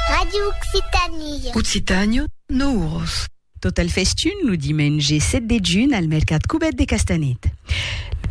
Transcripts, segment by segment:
Radio Occitanie. Occitània, Nouros. Tot el festun lo dimenge 7 de junh al mercat Cubèt de Castanet.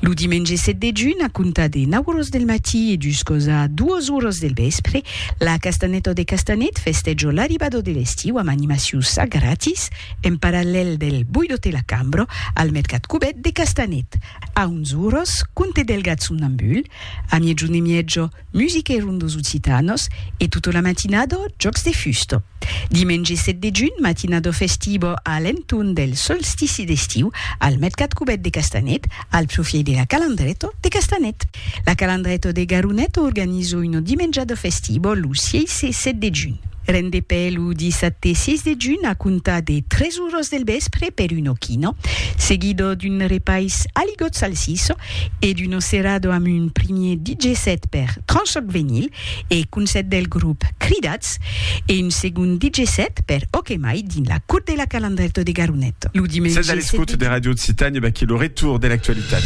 Lo dimenge 7 de junh, a comptar de 9 oras del matí e juscos a 2 oras del vèspre, la Castanèta de Castanet festèjo l'arribada de l'estiu amb animaciu ça gratis en parallèl del Boido te la cambra al mercat Cubèt de Castanet. A 11 oras, conte Delgat somnambul, a miègjun e mièja, Musique ron dos Occitanos e tota la matinada jòcs de fusta. Dimenge 7 de junh, matinada festiva a l'entorn del solstici d'estiu al Mercat Cubèt de Castanet, al profièit de la Calandreta de Castanet. La Calandreta de Garoneta organiza una dimenjada festiva lo 6 e 7 de junh. Rendepè lo dissabte 6 de junh a comptar de 3 oras del vèspre per una quina, seguida d'un repais aligot salsissa e d'Uno Cerrado amb un primier DJ set per Tranchoc Venyl e Concèrt del grop Cridats e un segond DJ set per Ok Mai dins la Cour de la Calandrèto de Garonet lo dimenge 7 de Sètz a l'escòute de Radio Occitània, vaquí lo retour de l'actualitat.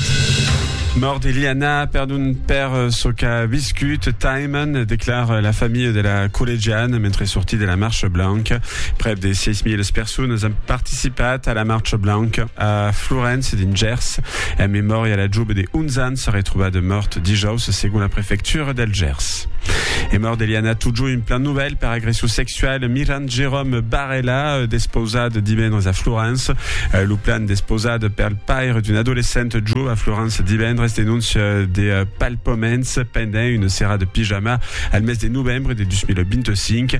Mòrt de Liana, perdon per çò qu'a viscut Taiman, declara la familha de la collegiana mentre sortí de la Marcha Blanca. Prèp de 6.000 personas an participat a la Marcha Blanca a Florence dins Gers. En memòria la jove de 11 ans retrobada mòrt dijaus segon la prefectura del Gers. E mòrt d'Eliana Tujo un plan novèl per agression sexual mirant Jérôme Barella despausat divendres a Florence. Lo plan despausat per le paire d'un adolescent jo a Florence divendres denóncia de palpaments pendent una serada pijama al mes de novembre de 2025.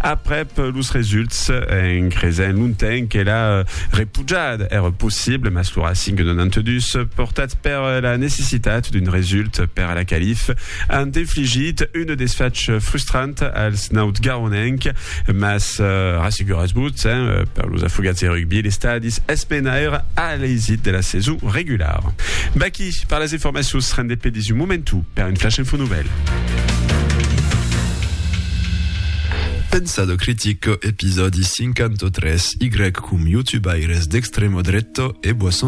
Aprèp los results, en cresent lontenc que la repujada èra possible, mas lo Racing 92, portat per la necessitat d'un result per a la qualif, an infligit un desfach frustrant als nautgaronenc, mas rasseguratz-vos, per los afogats de rugbi, l'estadi es menaire a l'eisit de la sason regulara. Vaquí per las informacions rendepedistas. Es un momentu per un flash info novèl. Pensado critico, episòdi 53, Y com youtubaires d'extremo dretto e boisson de